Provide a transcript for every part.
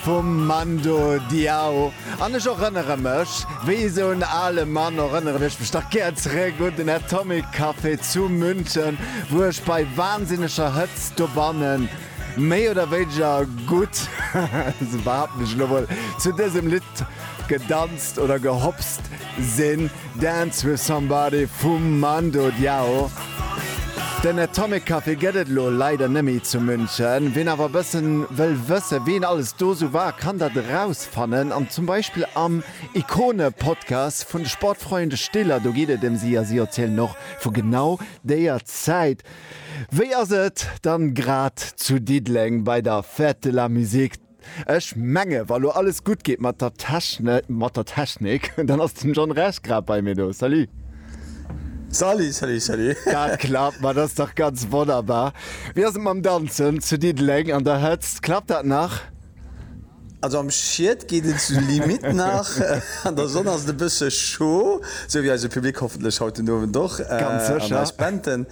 vum Mando Diao an ech erënnere mech wéi esou en ale Mann, erënneren ech mech dach gär zeréck un den Atomic Café zu München, wou ech bei wansinneger Hëtzt dobanne méi oder wéineger gutt, esou behaapten ech elo mol, zu dësem Lidd gedanzt oder gehopst. Sinn Dance with Somebody vum Mando Diao. Den Atomic Café gëtt et elo leider nëmmi zu München. Ween awer bëssen wëll wëssen ween alles do sou war kann dat erausfannen an zum Beispill am Ikone Podcast vun de Sportfreunde Stiller. Do geet et em si a si erzielen och vu genau déier Zäit. Wéi ass et dann grad zu Diddeleng bei der Fête de la Musique? Ech menge wa lo alles gutt geet mat der mat der Technik, dann ass den John Rech grad bei mir do. Salut! Salut, salut, salut! Dat klappt, ma dat ass dach ganz wonnerbar. Wéi ass et mam Danzen zu Diddeleng an der Hëtzt? Klappt dat nach? Also am Schied geet et zur Limite nach, an der Sonn ass et e bësse scho, sou wéi eise Public hoffentlech haut den Owend och, an eis Benten.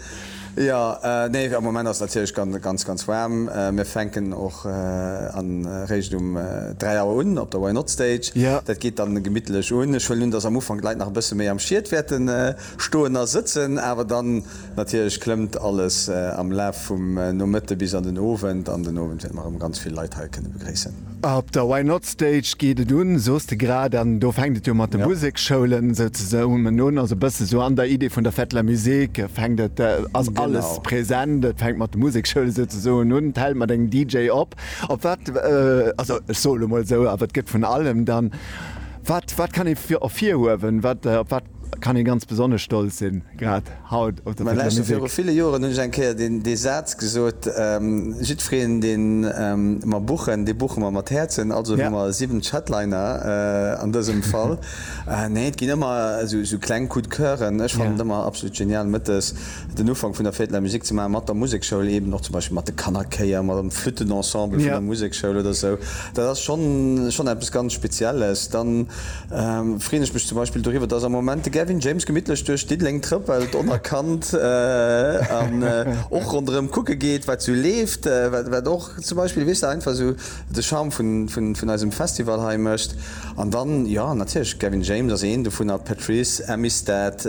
Jo, nee, am Moment ass et natierlech ganz, ganz waarm. Mir fänken och an eréischt um 3 Auer un op der Why Not Stage. Dat geet dann gemittlech un. Ech huelen un, dass am Ufank d'Leit nach e bësse méi am Schied wäerten stoen a sëtzen, awer dann natierlech klëmmt alles am Laf vum Nomëtte bis an den Owend. An den Owend wäerte mer erëm ganz vill Leit hei kënne begréissen. Op der Why Not Stage geet et un, soos de grad, an do fänkt et jo mat de Musekschoulen souzesoen un, also e bësse sou an der Idee vun der Fête de la Musique fänkt et, ass alles present. Et fänkt mat de Musekschoulen souzesoen un, d'Hell mat engem DJ op, op wat, also ech soe lo mol esou, awer et gëtt vun allem dann, wat, wat kann ee virhuewen, wat, op wat. Kann een ganz besonnesch stolz sinn, grad haut op der Fête de la Musique. Mä viru ville Joren hunn ech eng Kéier dee Saz gesot, Jiddwereen, dee mer buchen, dee buche mer mat Häerzen. Also hu mer 70 Headliner an dësem Fall. Nee, et ginn ëmmer esou kleng Coups de coeuren. Ech fannen et ëmmer absolut genial, mëttes den Ufank vun der Fête de la Musique ze maachen, mat der Musekschoul eeben, och zum Beispill mat de Kannerchéier, mat dem Flüttenensemble vun der Musekschoul oder esou. Dat ass schonn eppes ganz Spezielles. Freen ech mech zum Beispill doriwwer dass am Moment de Gavin James gemittlech duerch Diddeleng trëppelt onerkannt an och ronderëm kucke geet wat sou leeft, wat och zum Beispill weess de einfach sou de Charme vun eisem Festival hei mécht. An dann jo natierlech Gavin James ass een dovunner, Patrice, Amistad.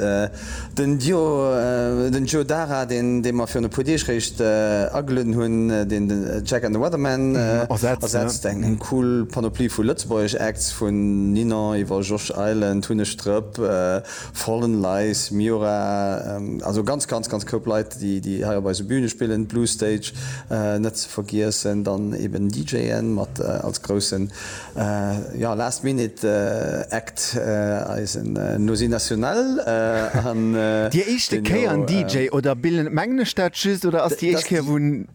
Den Joe Dara, dee mer virun e puer Deeg réischt agelueden hunn, deen de Jack and the Weathermen ersetzt. Eng cool Panoplie vu lëtzebuergesch Acts, vun Ninon iwwer Josh Island, Hunne Strëpp, Fallen Lies, Miura, also ganz, ganz, ganz Koup Leit, déi hei op eise Bühne spillen. D'Blue Stage net ze vergiessen, dann eben DJen mat als groussen Jo, last minute act, eisen Nosy National an. Dir éischte Kéier en DJ oder billen mengen ech dat just oder ass déi éischt Kéier wou en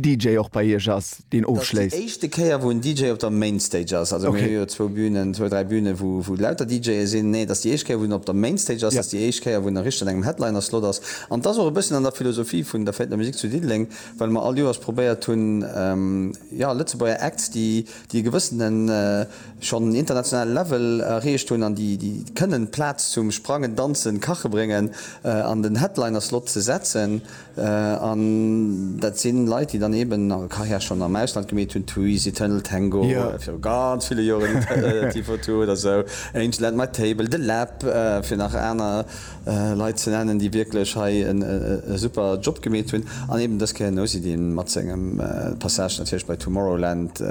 DJ och bei iech ass deen ofschléisst? Déi éischte Kéier wou en DJ op der Mainstage ass, also mir hu jo zwou Bünen, zwou, dräi Bünen wou lauter DJe sinn, nee et ass déi éischt Kéier wou en op der Mainstage ass, et ass déi éischt Kéier wou en richteg an engem Headliner Slot ass an et ass och e bësschen an der Philosophie vun der Fête de la Musique zu Diddeleng, well mer all Joers probéiert hunn, jo, Lëtzebuerger Acts déi. déi e gewëssene schonn internationale Level erreecht hunn an déi kënnen d'Plaz zum Sprangen, Danzen, Kache bréngen an den Headliner-Slot ze setzen. An dat si Leit, déi dann eeben hir Karriär schonn am Ausland gemeet hunn, Twice, Eternal Tango, viru ganz ville Joren, T-42 oder esou, Angel and My Table, The Lab, fir nach aner. Leit ze nennen, déi wierklech hei e super Job gemeet hunn, an eben dës Kéier den Nosy-D mat sengem Passage natierlech bei Tomorrowland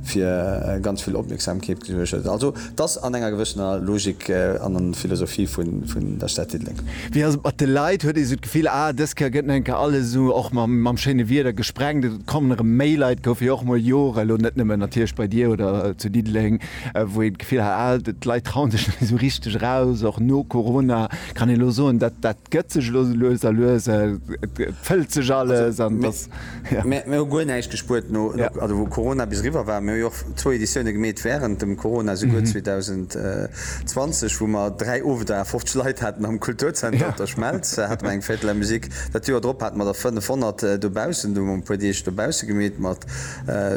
fir ganz vill Opmierksamkeet gesuergt huet. Also et ass an enger gewëssener Logik an an Philosophie vun der Stad Diddeleng. Wéi ass et mat de Leit? Huet ee sou d'Gefill, ah dës Kéier gëtt nach eng Kéier alles esou och mam schéine Wieder gesprengt, et kommen erëm méi Leit, gouf jo och mol Jore lo, net nëmmen natierlech bei dir oder zu Diddeleng, wou een d'Gefill hat, ah d'Leit trauen sech net méi esou richteg eraus, och no Corona, kann een elo soen, dat dat gëtt sech elo esou lues a lues, et fëllt sech alles an dass, jo. Mir hu guer näischt gespuert no, also wou Corona bis eriwwer war. Mir hu jo och zwou Editioune gemeet wärend dem Corona, souguer 2020, wou mer dräi Owender à 50 Leit haten am Kulturzenter op der Schmelz, hate mer eng Fête de la musique. Dat Joer drop hate mer der 500 dobaussen, do hu mer e puer Deeg dobausse gemeet mat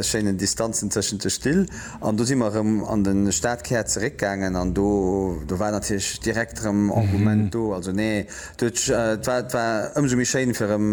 schéinen Distanzen tëschent de Still. An do si mer erëm an de Stadkär zeréckgaangen an do war natierlech direkt erëm Engouement do. Also nee, et war ëmsou méi schéin, fir erëm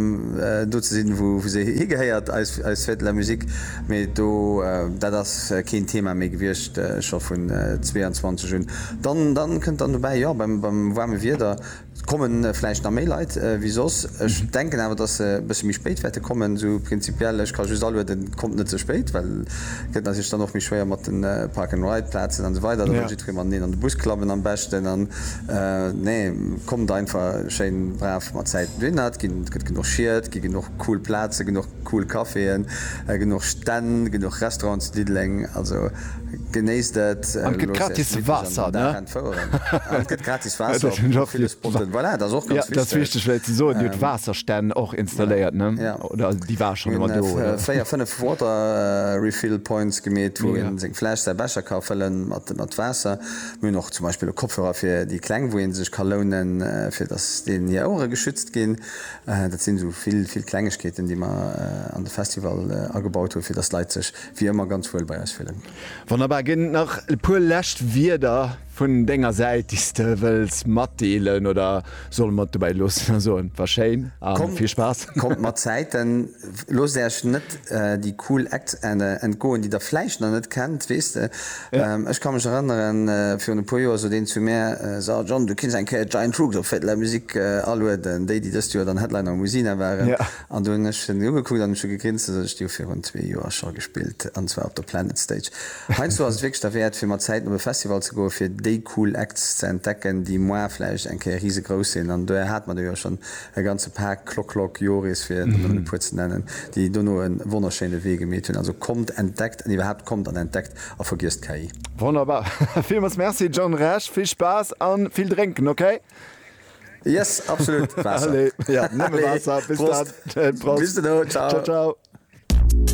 do ze sinn, wou se higehéiert, eis Fête de la Musique. Mee do, dat ass keen Thema méi gewiescht, scho vun 22 un. Dann kënnt dann dobäi, jo, beim waarme Wieder. Et komme vläicht nach méi Leit wéi soss. Ech denken awer, datt se e bëssche méi spéit wäerte kommen. Esou prinzipiell, ech ka just alueden, kommt net ze spéit, well et gëtt natierlech dann och méi schwéier mat de Park-and-Ride-Plazen an esou weider. Da wëll jiddweree mateneen an de Bus klappen am beschten. An nee, kommt einfach schéin brav mat Zäiten dohinner. Et gëtt genuch Schied, et gi genuch cool Plazen, genuch. Cool Caféen, genuch Stänn, genuch Restaurants zu Diddeleng, also genéisst et. An et gëtt gratis Waasser, ne? An et gëtt gratis Waasser op ville Spotten, voilà, dat ass och ganz wichteg. Dat ass wichteg fläit ze soen, Dir hutt Waasserstänn och installéiert, ne? Oder déi war schonn ëmmer do, oder? Mir hunn véier, fënnef Water Refill Points gemeet, wou ee seng Fläsch, säi Becher ka fëlle mat Waasser. Mir hunn och zum Beispill elo Kopfhörer fir déi Kleng, wou ee sech ka lounen, fir datt deenen hir Ouere geschützt ginn. Dat sinn esou vill, vill Klengegkeeten, déi mer an de Festival agebaut hunn, fir dass d'Leit sech wéi ëmmer ganz wuel bei eis fillen. Wonnerbar. Ginn et nach e puer lescht Wierder vun denger Säit, déi s de wëlls matdeelen, oder solle mer et dobäi loossen a soen, War schéin a vill Spaass? Kommt mat Zäiten. Loosst äerch net déi cool Acts entgoen, déi der vläicht nach net kennt, weess de. Ech ka mech erënneren, virun e puer Joer sot een zu mär, So John, du kinns eng Kéier Giant Rooks op Fête de la Musique alueden, déi, déi dëst Joer dann Headliner um Usina waren. An du hunn ech se ugekuckt an hunn scho gegrinst, esou ech déi hu virun zwee Joer scho gespillt, an zwar op der Planet Stage. Heiansdo ass et wierklech derwäert, fir mat Zäiten op e Festival ze goen, fir déi cool Acts ze entdecken, déi moar vläicht eng Kéier risegrouss sinn. An dohier hate mer der jo schonn E ganze Paak Klock Klock Joris, fir der nëmmen e puer ze nennen, déi dono e wonnerschéine Wee gemeet hunn. Also kommt, entdeckt an iwwerhaapt kommt an entdeckt a vergiesst d'KI. Wonnerbar! Villmols Merci John Rech, vill Spaass an vill drénken, okay? Yes, absolut! Waasser! Allez, ja nëmme Waasser! Bis dann! Prost! Bis dono! Ciao! Ciao! Ciao!